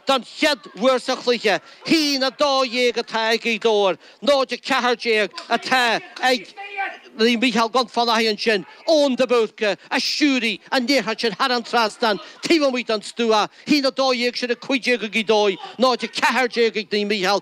Don chéad uair sa chluiche, 1-12 atá ag Gaoth Dobhair 0-14 atá ag Naomh Micheál Dún Fionnachaidh ansin Eoin de Búrca a stiúraigh an liathróid sin thar an trasnán taobh amuigh den stua, 1-12 sin 15 ag Gaoth Dobhair, 0-14 ag Naomh Micheál.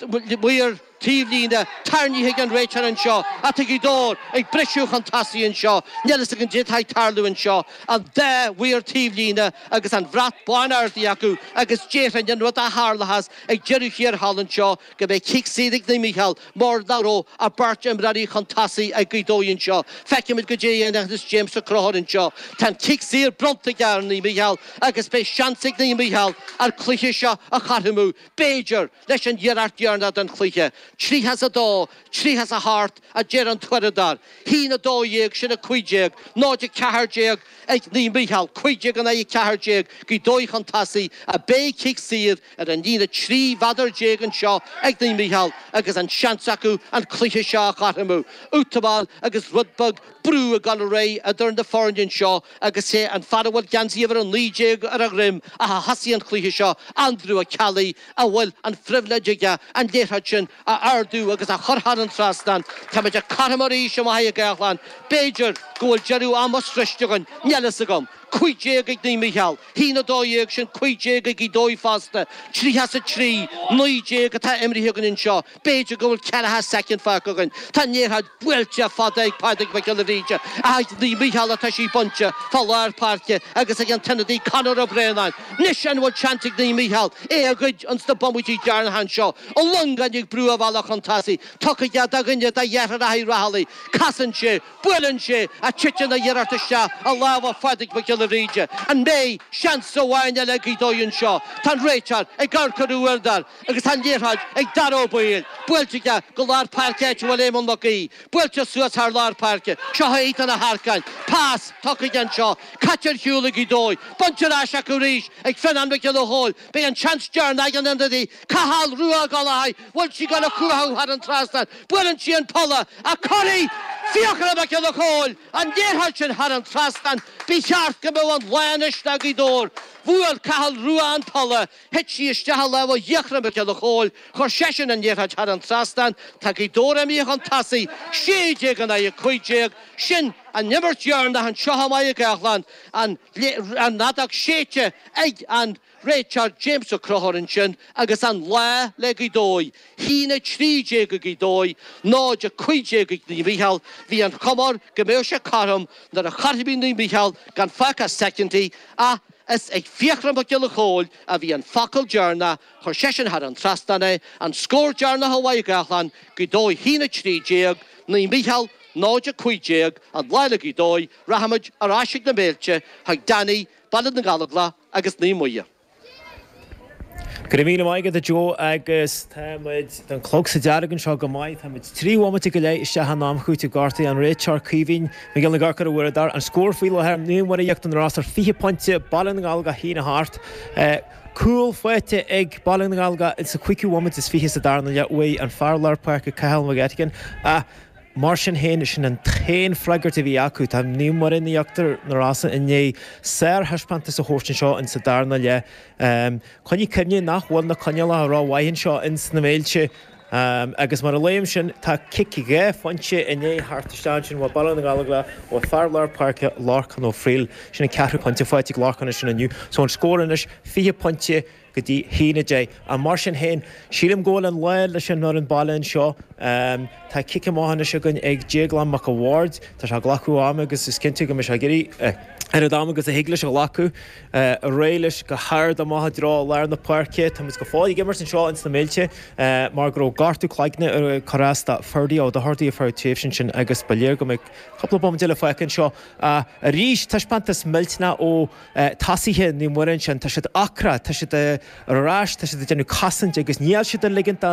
Maor taobhlíne tarraingthe ag an réiteoir anseo, atá Gaoth Dobhair ag briseadh chun tosaigh anseo. Níl fhios agam caidé atá ag tarlú anseo. An dá mhaor taobhlíne agus an bhrat bán ardaithe acu agus déarfainn an rud a tharlóchas ag deireadh thiar thall anseo go mbeidh cic saor ag Naomh Micheál mar nach raibh ach beirt imreoirí chun tosaigh ag Gaoth Dobhair anseo. Feicfimid caidé a dhéanfas James Ó Conchúir anseo. Tá an cic saor bronnta aige ar Naomh Micheál agus beidh seans ag Naomh Micheál an cluiche seo a chothromú, b'fhéidir. leis an iarracht dheireanach den chluiche. Tríocha is a dó, tríocha is a hocht a deir an t-uaireadóir. A haon a dó dhéag, sin a cúig déag, náid a ceathair déag ag Naomh Micheál, cúig déag in aghaidh a ceathair déag Gaoth Dobhair chun tosaigh, ach beidh cic saor ar an líne trí mhéadar déag anseo ag Naomh Micheál agus an seans acu an cluiche seo a chothromú. Útamáil agus rud beag brú ag dul ar aghaidh idir na foirne anseo. agus sé an fear a bhfuil geansaí uimhir a naoi déag ar a dhroim ach a thosaigh an cluiche seo, Andrew Ó Ceallaigh, a bhfuil an phribhléid aige an liathróid sin a ardú agus a chur thar an trasnán. Táimid cothrom arís i Machaire Gathlán. B'fhéidir go bhfuil deireadh ama sroichte againn. Níl fhios agam. Cúig déag ag Naomh Mícheál. A haon a dó dhéag sin cúig déag ag Gaoth Dobhair fosta. Tríocha is a trí, naoi déag atá imrithe againn anseo. B'fhéidir go bhfuil ceathracha soicind fágtha againn. Tá an liathróid buailte fada ag Pádraig Mac Giolla Bhríde ach ag Naomh Mícheál atá sí bainte fá lár páirce agus ag an t-ionadaí Conor Ó Braonáin. Anois an bhfuil seans ag Naomh Mícheál é a ghoid ins na bomaití deireanacha seo? Ó Longáin ag brú a bhealach chun tosaigh. Tugtha aige do dhuine de dheartháireacha Uí Raghallaigh. Casann sé. Buaileann sé. Ach titeann an iarracht isteach i lámha Phádraig Mhic Giolla Bhríde. An mbeidh seans amháin eile ag Gaoth Dobhair anseo? Tá an réiteoir ag amharc ar a uaireadóir. agus tá an liathróid ag Dara Ó Baoill, buailte aige go lár páirce áit a bhfuil Éamonn Mac Aoidh, buailte suas thar lár páirce, seo é Ethan Ó hEarcáin, pas, tugtha aige anseo, caite ar shiúl ag Gaoth Dobhair, bainte ar ais acu arís ag Fionán Mac Giolla Chóill, beidh an seans deireanach ag an ionadaí, Cathal Rua Ó Gallchóir, bhfuil sí ag dul a chuarú thar an trasnán, buaileann sí an polla, ach cuiridh Fiachra Mac Giolla Chóill an liathróid sin thar an trasnán, ba cheart go mbeadh an lá anois le Gaoth Dobhair, bhuail Cathal Rua an polla, Thit sí isteach i lámha Fhiachra Mhic Giolla Chóill, chuir seisean an liathróid thar an trasnán, tá Gaoth Dobhair amuigh chun tosaigh, 16 in aghaidh 15, sin an imirt dheireanach anseo i Machaire Gathlán, an fheadóg séidte ag an réiteoir James Ó Conchúir ansin agus an lá le Gaoth Dobhair, 1-13 ag Gaoth Dobhair, 0-15 ag Naomh Mícheál, bhí an chuma air go mbeadh sé cothrom nuair a chothromaigh Naomh Mícheál gan fágtha ach soicindí ach. Is ag Fiachra Mac Giolla Chomhaill a bhí an focal deireanach, chuir seisean thar an trasnán é, an scór deireanach i Machaire Gathlán, Gaoth Dobhair 1, 13, Naomh Micheál, 0, 15, an lá le Gaoth Dobhair, Rachaimid ar ais chuig na Méilte, chuig Danny, Baile na nGallóglach agus Naomh Muire. Go raibh míle maith agat a Joe agus tá muid don clog sa dearg anseo go maith. Tá muid trí bhomaite go leith isteach in am cúitimh gortaithe an réiteoir Caoimhín Mac Fhionnghaile ag amharc ar a uaireadóir an scór faoi láthair, Naomh Muire Íochtar na Rosann fiche pointe, Baile na nGallóglach a haon a hocht. Cúl faighte ag Baile na nGallóglach sa chúigiú bomaite is fiche sa darna leath uaidh an fear lár páirce Cathal Mac Eiteagáin. Mar sin féin, sin an t-aon freagairt a bhí acu. Tá Naomh Muire Íochtar na Rosann i ndiaidh sárthaispeántas a thabhairt anseo insa darna leath. Coinnigh cuimhne nach bhfuil na coinníollacha rómhaith anseo ins na Méilte agus mar a luaim sin tá cic dhá phointe i ndiaidh a theacht isteach ansin ó Bhaile na nGallóglach ó fear lár páirce, Lorcán Ó Fríl. Sin an ceathrú pointe faighte ag Lorcán ansin inniu so an scór anois fiche pointe. go dtí a haon a deich. Mar sin féin, sílim go bhfuil an lá leis an fhoireann baile anseo. Tá cic amach anois againn ag Déaglán Mac a' Bhaird. Tá sé ag glacadh ama agus is cinnte go mbeidh sé ag iarraidh a oiread ama agus a thig leis a ghlacadh ar aghaidh leis go hard amach i dtreo lár na páirce. Táimid go fóill ag imirt anseo ins na Méilte mar go raibh gortú cloiginn ag cur as do Ferdia Ó Dochartaigh ar feadh an tréimhse ansin agus ba léir go mbeidh cúpla bomaite le feiceáil anseo arís. Taispeántas millteanach ó. tosaithe Naomh Muire ansin, tá siad ocrach, tá siad ar ais, tá siad ag déanamh cosaint agus níl siad ag ligint do.